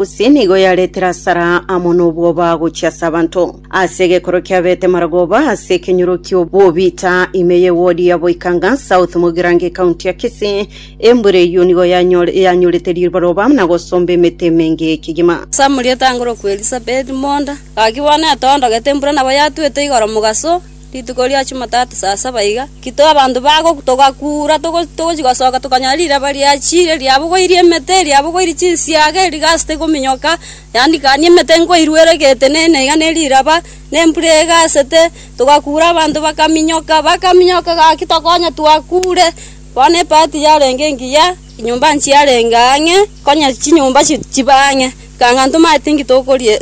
Gose nigo yaretire asara amo nobwoba gochia ase abanto. Ase egekoro kiabete Maragoba ase ekenyoro ki'obobita ime ye wodi ya Boikanga, South Mugirango ecounty ya Kisii, embura eyio nigo yanyore yanyorete riroba na gosomba emete emenge ekegima. Samuel etangorokwa Elisabeti monda, gakigwana etondogete embura nabo yatwete igoro mogaso. Rituko ria Chumatatu saa saba iga, ekero abanto bagoka, togakuura togochia gosoka, tokanyora riraba riachire, riabogoirie emete, riabogoirie chinsiaga, erigasi tegominyoka, yaani kani emete nkoirwa erege etenena iga ne riraba, ne embura egasete, togakuura abanto bakaminyoka, bakaminyoka gaki tokonya twakuure, bono ebati yarenge engiya, enyomba nchiarenge ang'e, konya chinyomba chibaa ang'e, ekang'a ntomanyeti nki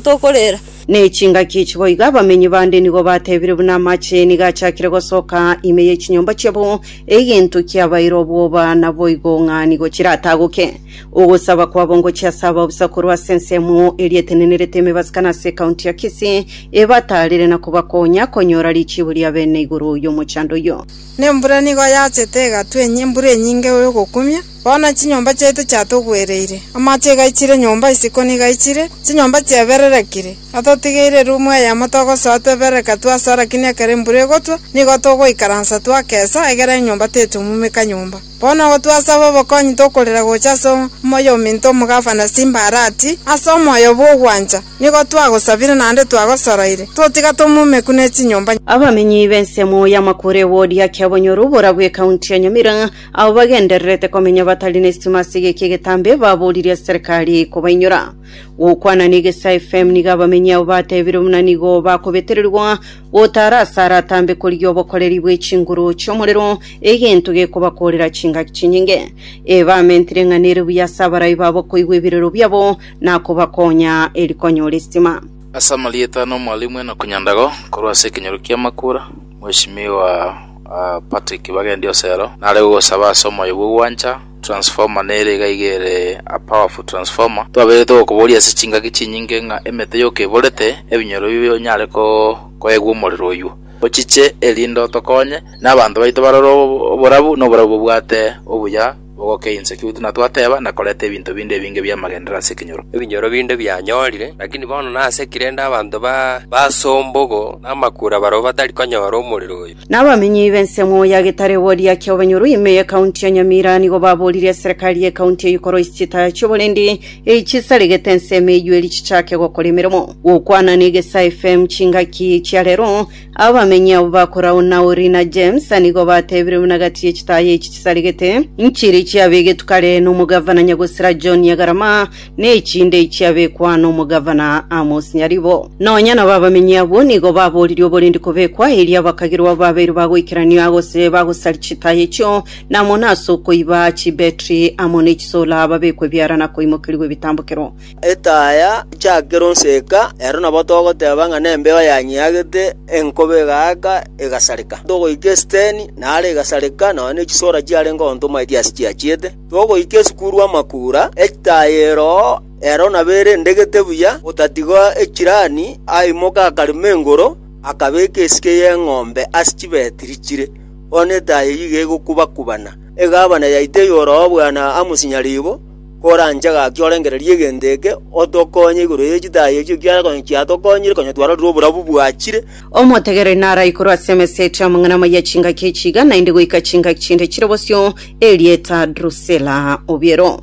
tokorera. Ne chingaki echi boigo abamenyi bande nigo batebire buna amache nigo achakire gosoka ime ye chinyomba chiabo, egento kiabaire obwoba naboigo ng'a nigo chiratagoke. Ogosaba kwabo ngochia ase ababusa korwa ase ensemo eria etenenerete emebasika na ase ekaunti ya Kisii, ebataarere na kobakonya konyora richiibo ria bene igoro y'omochando oyio. Nembura nigo yachete egatwenya embura enyinge y'ogokumia, Bono chinyomba chiaito chiatogwereire, amache igaichire nyomba isiko nigo aichire, chinyomba chiabererekire, atotigeire erumu eyemo togosoa tweberereka twa ase arakini ekero embura egotwa, nigo togoikaransa twakesa, egere enyomba tetomumeka nyomba. Bono agwo twasaba obokonyi tokorera gocha ase omoyominto omogafana Simbarati, ase omoyo bw'ogwancha, nigo twagosabire naende twagosoroire, totiga tomumeku ne chinyomba. Abamenyi b'ensemo y'amakoro egodi akia Bonyoru boragwo ekaunti ya Nyamira, Abo bagendererete komenya batari nestima ase egeki egetambe baboorire ase serikari kobainyora. Gokwana na Egesaa FM nigo abamenyi abo batebire buna nigo bakobetererwa gotaara ase aratambe korigia obokoreri bwe chinguru chi'omorero egento gekobakoorera chingaki chinyinge. Ee bamentire ng'a nere buya ase abarai babo koigwa ebirero biabo na kobakonya eri konyora estima. Ase amarieta ano Mwalimu Enock Nyandago korwa ase ekenyoro ki'Amakura, Mweshimiwa. Ah Patrick bagendi osero nare gogosaba ase omoyo bwo gwancha transformer nere iga iga ere a powerful transformer twaberete gokoboria ase chingaki chinyinge ng'a emete yoka eborete ebinyoro bibio onyare ko koegwa omorero oyuo ochiche erinde otokonye na abanto baito barore oborabu na oborabu bobwate obuya Mogoke inse, ki gotuna twateba, na koreta ebinto binde ebinge bi'amagenderero ase ekenyoro. Ebinyoro binde bianyorire, lakini bono nase ki rende abanto ba basombogo na amakura barabwo batari konyora omorero oyo? Na abamenyi b'ensemo ya Getareworia kia Obanyoro ime ye County ya Nyamira nigo baboorire eserekari ye County eye ikoroe chitaa chi'oborendi eyi chisaregete ensemo eyio eri chichake gokora emeremo. Gokwana na Egesa FM chingaki chia rero, Abamenyi abwo ba Korau na Uri na James nigo batebire buna gati ye chitaaya echi chisarigete, nchiri chiabegetwe kare nomogavana Nyagosira John Nyagarama, na echinde chiabekwa nomogavana Amos Nyaribo. Nonya nabo abamenyi abwo nigo baboririe oborindi kobekwa, erio abakagirwa abo babeire bagoikeranio gose bagosaria chitaaya echio, na amo nase okoiba chibetri amo ne chisola, babekwe ebiara na koimokerigwa ebitambokero. Etaya nchake ronseka, ero nabo togoteba ng'a nembeo yanyeagete, enkobe egaaka, egasareka. Togoika esiteni, nare egasareka, nonya ne chisora chiarenge ogontoma eria ase chiachiete. Togoika esukuru amakura, etaya eroo, ero nabo erendegete buya, otatiga echirani, aimoka akarema engoro, akabeka esike y'eng'ombe ase chibetiri chire. Bono etaya eyio iga egokuba-kubana, egabana yaito eyore oo buna amosinyaribo. koranche gaki orengererie egento eke, otokonye igoro ye chitaai echio, ekiagera konya chiatokonyire, konya twarorire oborabu bwachire. Omotegereri narae korwa ase emesa etia amang'ana amaya chingaki echi iga, naende goika chingaki chinde chire bosio, erieta Drusila obiero.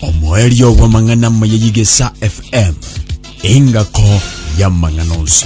Omoerio bw'amang'ana amaya y'Igesa FM, engako y'amang'ana onsi.